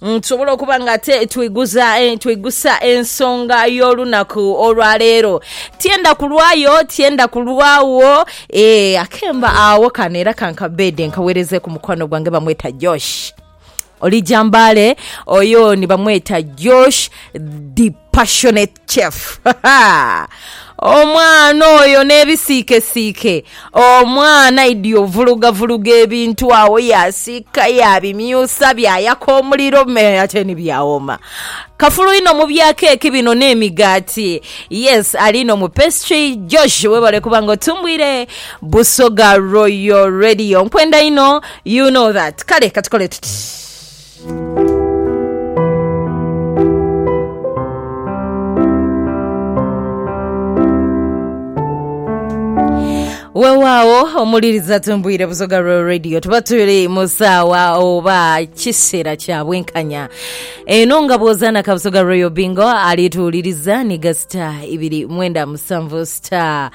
Tusobola okuba nga ate twiguza eh, twigusa ensonga y'olunaku olwa leero. Tyenda kulwayo, tyenda kulwawo, eh, akemba agho kano era kankabeede nkaweereze ku mukwano gwange bamweta Josh. Oli jambaale, oyo ni bamweta Josh the passionate. Chef, Ha! Omwana oyo n'ebisiikesiike! Omwana aidhi ovulugavuluga ebintu agho, yaasiika, yaabimyusa, byayaka omuliro me ate ni byawooma. Kafulu inho mu bya keeki bino n'emigaati. Yes, ali inho mu pastry. Josh, webale kuba nga otumbwire Busoga Royal Radio. Nkwenda inho, you know that. Kale katukole tuti. Weewaawo omuwuliriza tumbwire Busoga Royal Radio tuba tuli mu saawa oba kiseera kya bwenkanya eno nga bw'ozaana ka Busoga Royal Bingo alituwuliriza ni ga sita ibiri mwenda musanvu sita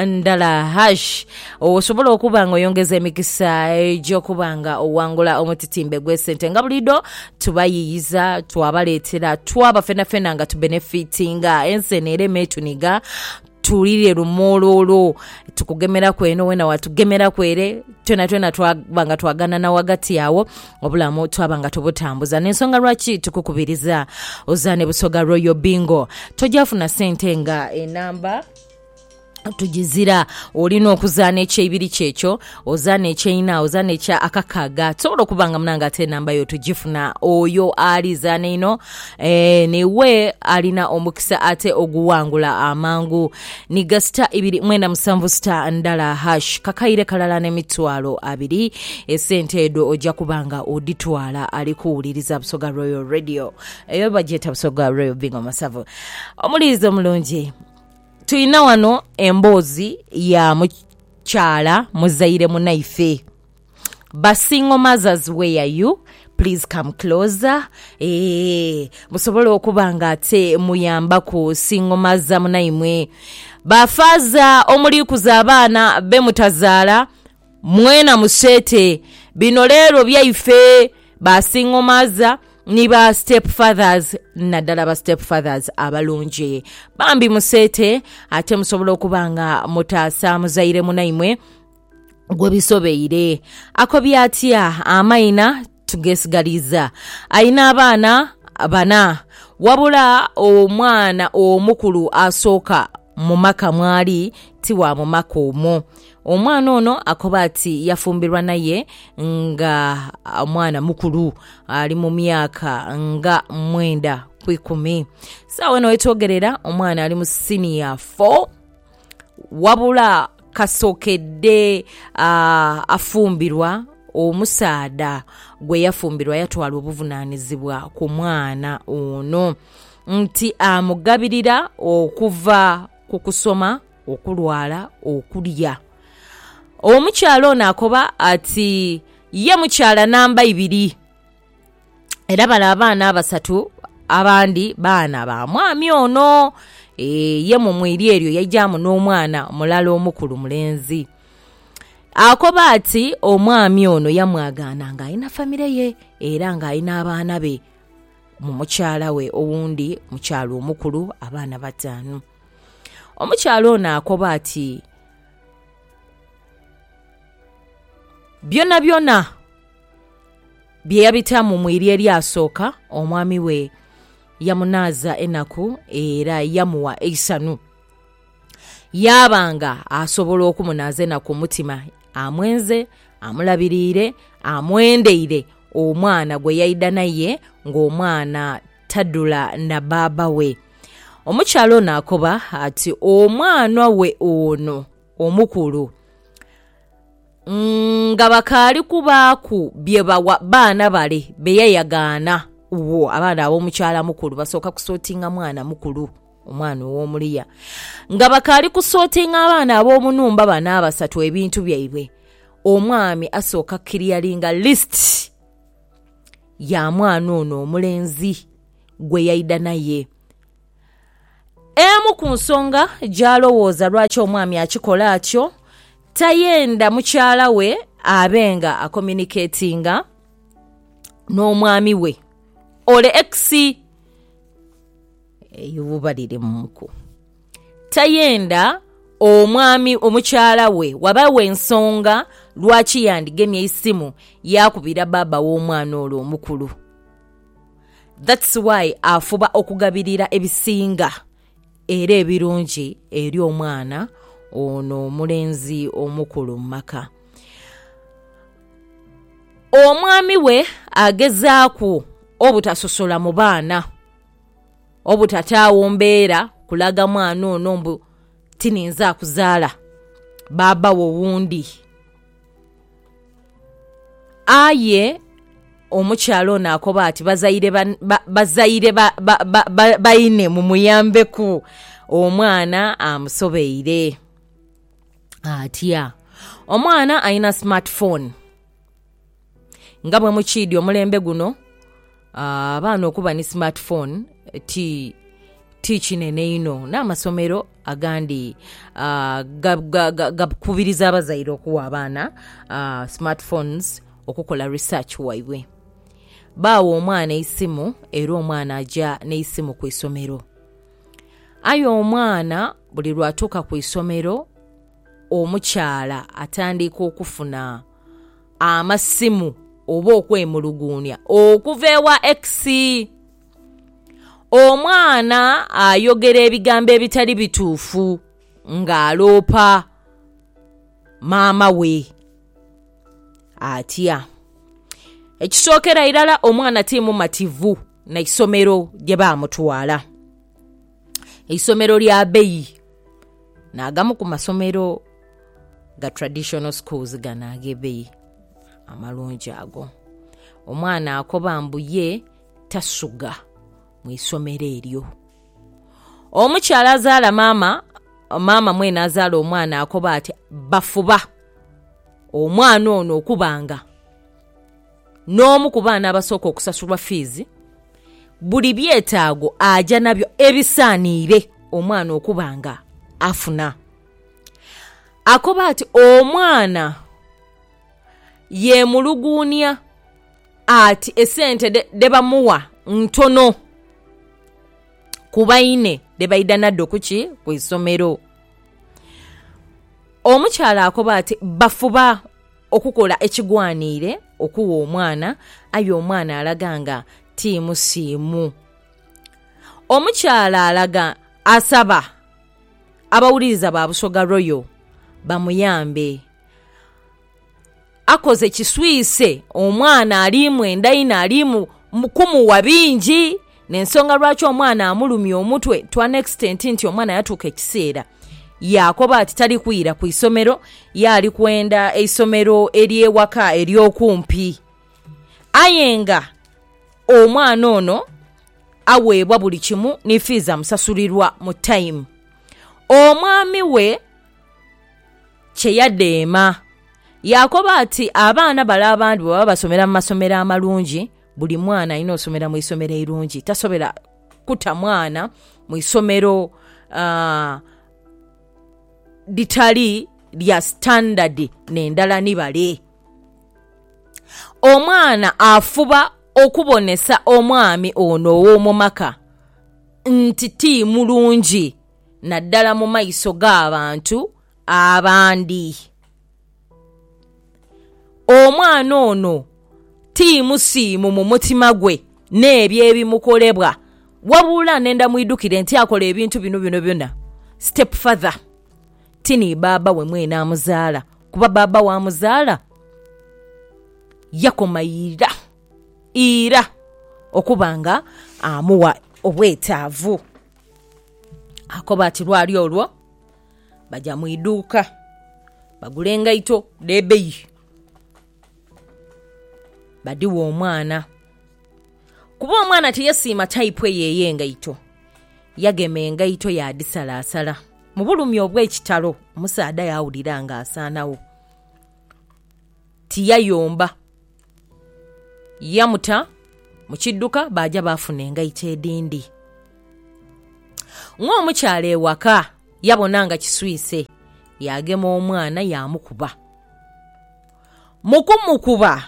ndala hash Osobola okuba nga oyongeza emikisa egy'okuba nga oghangula omutitimbe gw'esente nga buliidho tubayiiyiza, twabaleetera, twaba fenafena nga tubenefitinga. Ensi eno erema etuniga, tuwulire lumuuluulu. Tukugemeraku eno, wena watugemeraku ere, twonatwona twaba nga twaganana ghagati agho, obulamu twaba nga tubutambuza. N'ensonga lwaki tukukubiriza ozaane Busoga Royal Bingo. Toja funa sente nga enamba. tugizira. Olina okuzaana ekyeibiri kyekyo, ozaane ekyeina, ozaane ekya akakaaga. Tusobola okuba nga munange ate enamba yo tugifuna. Oyo ali zaana einho ee n'iwe alina omukisa ate oguwangula amangu. Nhiga sita ibiri mwenda musanvu sita ndala hash kakaire kalala n'emitwalo abiri. Esente edho oja kuba nga odhitwala ali kuwuliriza Busoga Royal Radio. Eyo bagyeta Busoga Royal Bingo Masavu. Omuliiza omulungi. Twinha ghano emboozi ya mukyala muzaire munaife ba single mothers where you please come closer eeh musobole okuba nga ate muyambaku single mother munaimwe, ba faaza omuli kuza abaana bemutazaala. Mwena museete. Bino leero byaife ba single mother ni ba step fathers naddala ba step fathers abalungi. Bambi museete ate musobola okuba nga mutaasa muzaire munaimwe gwe bisobeire. Akobye atya amaina Tugesigaliiza alina abaana bana wabula omwana omukulu asooka mu maka mw'ali ti wa mu maka omwo. Omwana ono akoba ati yafumbirwa n'aye nga mwana mukulu, ali mu myaka nga mwenda ku ikumi. Sawa eno wetwogerera omwana ali mu siniya fo. Wabula kasokedde afumbirwa, omusaadha gwe yafumbirwa yatwala obuvunanizibwa ku mwana ono nti amugabirira okuva ku kusoma, okulwala, okulya. Omukyala ono akoba ati ye mukyala namba ibiri. Era bale abaana abasatu abandi baana ba mwami ono. Ee, ye mu mwiri eryo yaijaamu n'omwana mulala omukulu mulenzi. Akoba ati omwami ono yamwagaana ng'alina famire ye era ng'alina abaana be mu mukyala we owundi mukyala omukulu abaana bataanu. Omukyala ono akoba ati byonabyona. Bye yabitamu mu irya eryasooka, omwami we yamunaaza enaku era yamuwa eisanhu. Yaaba nga asobola okumunaaza enaku ku mutima, amwenze, amulabiriire, amwendeire omwana gwe yaidha naye ng'omwana tadhula na bbaabba we. Omukyala ono akoba ati, Omwanwa we ono omukulu Nga bakaali kubaaku bye bawa baana bale be yayagaana wo, abaana ab'omukyalamukulu basooka kusootinga mwana mukulu, omwana ow'omu luya. Nga bakaali kusootinga abaana ab'omu nhumba bano abasatu ebintu byaibwe, omwami asooka kukiliyaringa lisiti ya mwana ono omulenzi gwe yaidha naye. Emu ku nsonga gy'alowooza lwaki omwami akikola atyo, tayenda mukyala we abe nga akomuniketinga n'omwami we ole ekisi eyo buba liri mu nku. Tayenda omwami, omukyala we wabawe ensonga lwaki yandigemye eisimu yaakubira baaba w'omwana ole omukulu. That's why afuba okugabirira ebisinga era ebirungi eri omwana ono omulenzi omukulu mu maka. Omwami we agezaaku obutasosola mu baana, obutataawo mbeera kulaga mwana ono mbu tininza kuzaala, baaba wo wundi. Aye omukyala ono akoba ati bazaire bazaire baine mumuyambeku omwana amusobeire. Atya? Omwana alina smart phone. Nga bwe mukiidhi omulembe guno abaana okuba ni smart phone ti ti kinene inho, n'amasomero agandhi gakubiriza abazaire okuwa abaana smart phones okukola research waibwe. Baawa omwana eisimu era omwana aja n'eisimu ku isomero. Aye omwana buli lwatuuka ku isomero... omukyala atandiika okufuna amasimu oba okwemuluguunia okuva ewa ekisi. Omwana ayogera ebigambo ebitali bituufu ng'aloopa maama we. Atya? Ekisookera irala omwana ti mumativu na isomero gye bamutwala. eisomero lya beyi nagamu ku masomero ga traditional schools gano agebeyi amalungi ago. Omwana akoba mbu ye tasugha mwisomero eryo. Omukyala azala maama, maama mwene azala omwana akoba ati bafuba omwana ono okuba nga... N'omu ku baana abasooka okusasulwa fiizi, buli byetaago aja nabyo ebisaaniire omwana okuba nga afuna. Akoba ati, Omwana yeemuluguunia ati esente dhe bamuwa ntono ku baine dhe baidha nadho ku ki? Ku isomero. Omukyala akoba ati, Bafuba. Okukola ekigwaniire okugha omwana aye omwana alaga nga ti musiimu. Omukyala alaga asaba abawuliriza ba Busoga Royal bamuyambe. Akoze kiswise omwana ali mwenda inho ali mu kumugha bingi. N'ensonga lwaki omwana amulumya omutwe to an extent nti omwana yatuuka ekiseera yaakoba ati tali kwira ku isomero, ye ali kwenda eisomero ery'ewaka ery'okumpi. Aye nga omwana ono aweebwa buli kimu ni fiizi amusasulirwa mu tayimu. Omwami we kye yadheema yaakoba ati abaana bale abandi bwe baba basomera mu masomero amalungi Buli mwana alina osomera mu isomero eirungi. Tasobera kuta mwana mu isomero litali lya sitandadi n'endala ni bale. Omwana afuba okubonesa omwami ono ow'omu maka nti ti mulungi naddala mu maiso g'abantu abandi. Omwana ono ti musiimu mu mutima gwe n'ebyo ebimukolebwa wabula nenda mwidhukire nti akola ebintu bino byonabyona stepfather ti ni bbaabba we mwene amuzaala kuba bbaabba we amuzaala yakoma ira, ira okuba nga amuwa obwetaavu. Akoba ati lwali olwo... baja mu iduuka bagula engaito dh'ebbeyi badhighe omwana. Kuba omwana tiyesiima taipu eyo ey'engaito, yagema engaito yaadhisalaasala. Mu bulumi obw'ekitalo omusaadha yaawulira ng'asaanagho, tiyayomba. Yamuta mu kidduka baaja baafuna engaito edhindi. Ng'omukyala ewaka yabona nga kiswise, yaagema omwana yaamukuba. Mu kumukuba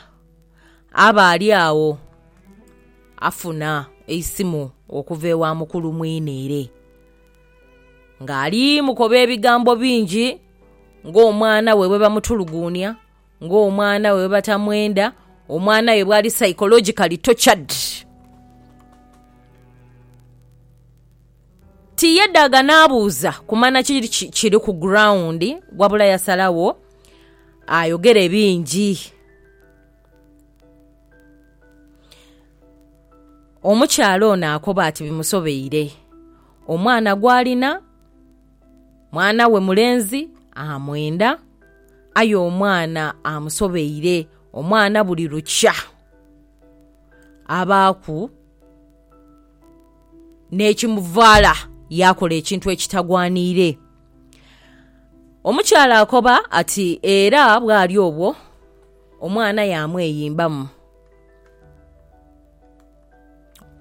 aba ali agho afuna eisimu okuva ewa mukulu mwine ere ng'ali mukoba ebigambo bingi ng'omwana we bwebamutuluguunia. Ng'omwana we bwebatamwenda, omwana we bwali psychologically tortured. Tiyedaaga n'abuuza kumanya ki ki- kiri ku ground, wabula yasalawo ayogere bingi. Omukyala ono akoba ati bimusobeire, omwana gw'alina Mwana we mulenzi amwenda, aye omwana amusobeire. Omwana buli lukya abaaku n'ekimuvaala yaakola ekintu ekitagwaniire. Omukyala akoba ati era bwali obwo omwana yaamweyimbamu.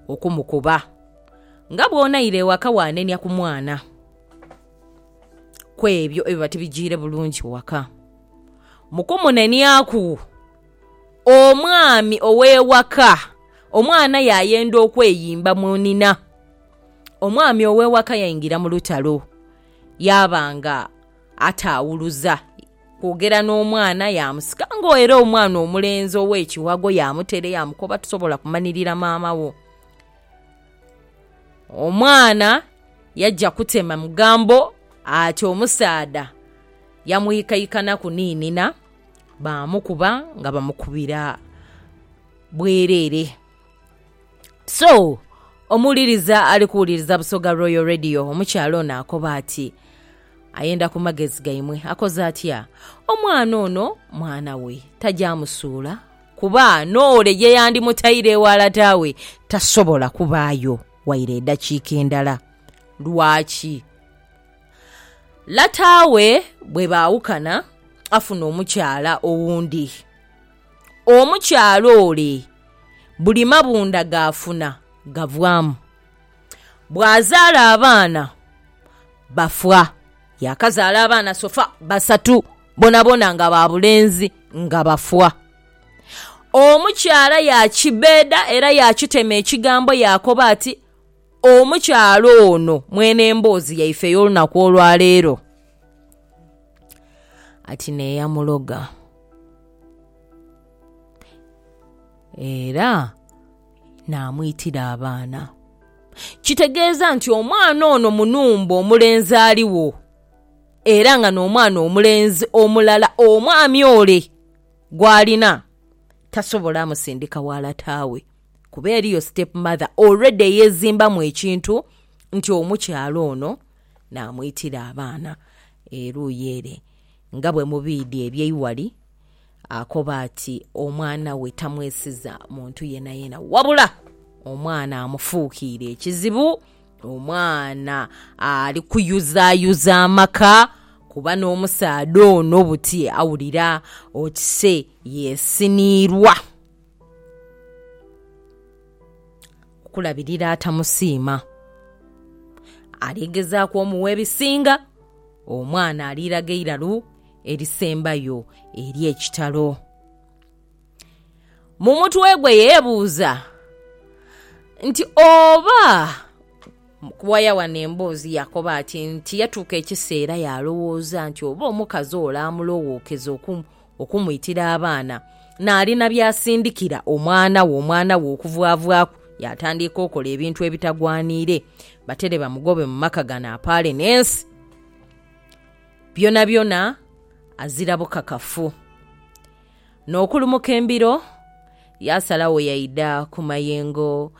okumukuba. Nga bw'onaira ewaka waanenia ku mwana ku ebyo ebiba tibijiire bulungi waka. Mu kumuneniaku, omwami ow'ewaka omwana yaayenda okweyimba munhina. Omwami ow'ewaka yaingira mu lutalo yaaba nga ataawuluza. Kwogera n'omwana yaamusika nga era omwana omulenzi ow'ekiwago yaamutere yaamukoba tosobola kumanirira maama wo. Omwana yaja kutema mugambo ati omusaadha yamuikaikanaku ni nina baamukuba nga bamukubira bwereere. So, omuwuliriza ali kuwuliriza Busoga Royal Radio, omukyala ono akoba ati, Ayenda ku magezi gaimwe. Akoze atya? Omwana ono mwana we, taja amusuula kuba n'ole ye yandimutaire eghala taawe, tasobola kubaayo waire edakiika endala. Lwaki? Lataawe bwe baawukana, afuna omukyala owundi. omukyala ole buli mabundha g'afuna gavwamu. Bwazaala abaana bafa. Yaakazaala abaana sofa basatu boonaboona nga ba bulenzi nga bafa. Omukyala yaakibbeeda era yaakitema ekigambo yaakoba ati, Omukyala ono mwene emboozi yaife ey'olunaku olwaleero ati n'eyamuloga. Era naamwitira abaana. Kitegeeza nti omwana ono mu nhumba omulenzi aligho era nga n'omwana omulenzi omulala omwami ole gw'alina tasobola musindika gha lata we kuba eriyo sitepu madha oluredi eyezimbamu ekintu nti omukyala ono naamwitira abaana eruuyi ere. nga bwe mubiidhi eby'eighali, akoba ati omwana we tamwesiza muntu yenayena wabula omwana amufuukiire ekizibu, omwana ali kuyuzayuza amaka kuba n'omusaadha ono buti awulira oti se yeesiniirwa. Okulabirira atamusiima, aligezaaku omugha ebisinga, omwana aliraga eiralu erisembayo ery'ekitalo. Mu mutwe gwe yeebuuza nti, Oba waya wano emboozi yakoba ati nti yatuuka ekiseera yaalowooza nti oba omukazi ole amulowookeza okumwitira abaana, naali na by'asindikira omwana we, omwana we okuvwavwaku yaatandiika okola ebintu ebitagwaniire, batere bamugobe mu maka gano apaale n'ensi byonabyona azira bukakafu. N'okulumuka embiro, yaasalagho yaidha ku mayengo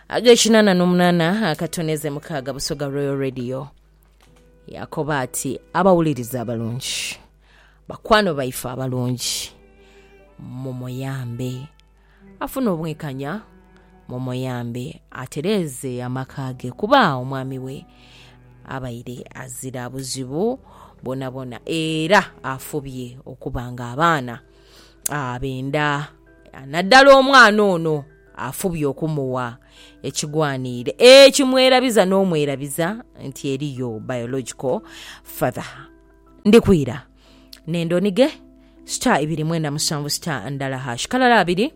ag'ekinana n'omunana akatoneze mukaaga Busoga Royal Radio. Yaakoba ati, Abawuliriza abalungi! Bakwano baife abalungi mumuyambe afune obwenkanya, mumuyambe atereeze amaka ge kuba omwami we abaire azira buzibu bwonabwona era afubye okuba nga abaana abenda naddala omwana ono afubye okumuwa ekigwaniire ekimwerabiza n'omwerabiza nti eriyo biological father. Ndi kwira. Nenda onige star ibiri mwenda musanvu star ndala hash kalala abiri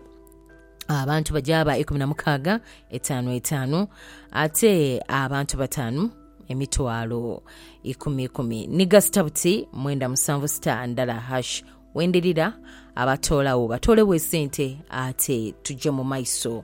abantu bagyaba ikumi na mukaaga etaanu etaanu ate abantu bataanu emitwalo ikumi ikumi niga sita buti mwenda musanvu sita ndala hash wendirira abatoolawo batoolewo esente ate tujje mu maiso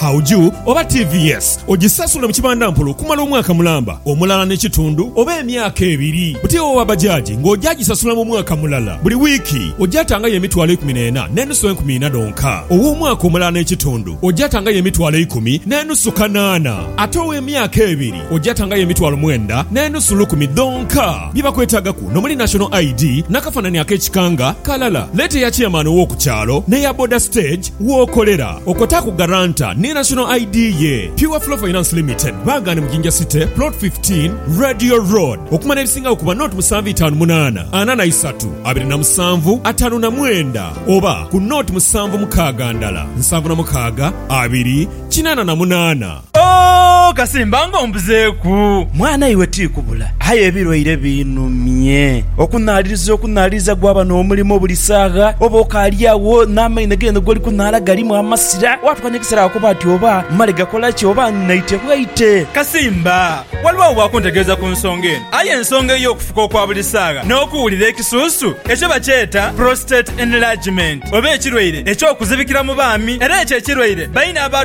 Hauju oba TVS ogisasula mu kibandampola okumala omwaka mulamba, omulala n'ekitundu oba emyaka ebiri. Buti owa bajaji ng'oja gisasula mu mwaka mulala. Buli wiiki oja tangayo emitwalo eikumi n'ena n'enusu enkumi ina dhonka. Ow'omwaka omulala n'ekitundu oja tangayo emitwalo eikumi n'enusu kanaana. Ate ow'emyaka ebiri oja tangayo emitwalo mwenda n'enusu lukumi dhonka. Bye bakwetagaku n'omuli National ID, n'akafanani ak'ekika nga kalala. Leeta eya Chairman ow'oku kyalo n'eya boda stage w'okolera. Okwotaaku guarantor ni National ID ye. Pure Flow Finance Limited baaghaane mu Jinja City, Plot 15, Radio Road. Okumala ebisingawo kuba noti musanvu itaanu munaana ana na isatu abiri na musanvu ataanu na mwenda oba ku noti musanvu mukaaga ndala nsanvu na mukaaga abiri kinaana na munaana. Oh, kasimba nga ombuzeeku! Mwana iwe ti kubula, aye ebilwaire biinhumye. Okunhaaliriza okunhaaliriza gwaba n'omulimo buli saagha, oba okaali agho n'amaino geene g'oli kunhaala galimu amasira, waatuuka n'ekiseera ghaakoba ati, Oba mmale gakola ki? Oba nnaite bwaite? Kasimba, waliwo agho akuntegeeza ku nsonga eno, aye ensonga ey'okufuka okwa buli saagha n'okuwulira ekisuusu ekyo bakyeeta prostate enlargement, oba ekirwaire eky'okuzibikira mu baami, era ekyo ekirwaire baine aba.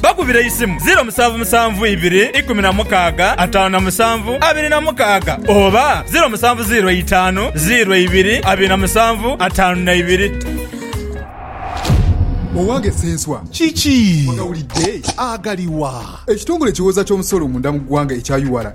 Bakubire eisimu ziiro musanvu musanvu ibiri ikumi na mukaaga ataanu na musanvu abiri na mukaaga oba ziiro musanvu ziiro eitaanu ziiro eibiri abiri na musanvu ataanu na ibiri. Owange Ssenswa, Kiki? Ogawulidde? Agaliwa? Ekitongole ekiwooza ky'omusolo munda mu ggwanga ekya ura,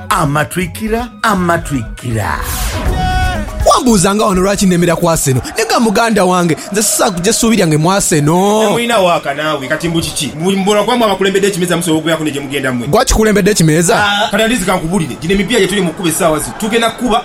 Amatwikira, amatwikira. Wambuuzanga wano lwaki nemera ku Arsenal. Naye ga muganda wange, nze sisobola kuja suubi lyange mu Arsenal. Temulina waaka naawe, kati mbu kiki? Mbu mubolo gwamwe abakulembedde ekimeeza musobola okubeeraku ne gye mugenda mwe? Gwaki kukulembedde ekimeeza? Kati at least kankubulire, gino emipiira gye tuli mu kukuba essaawa zino tugenda kukuba.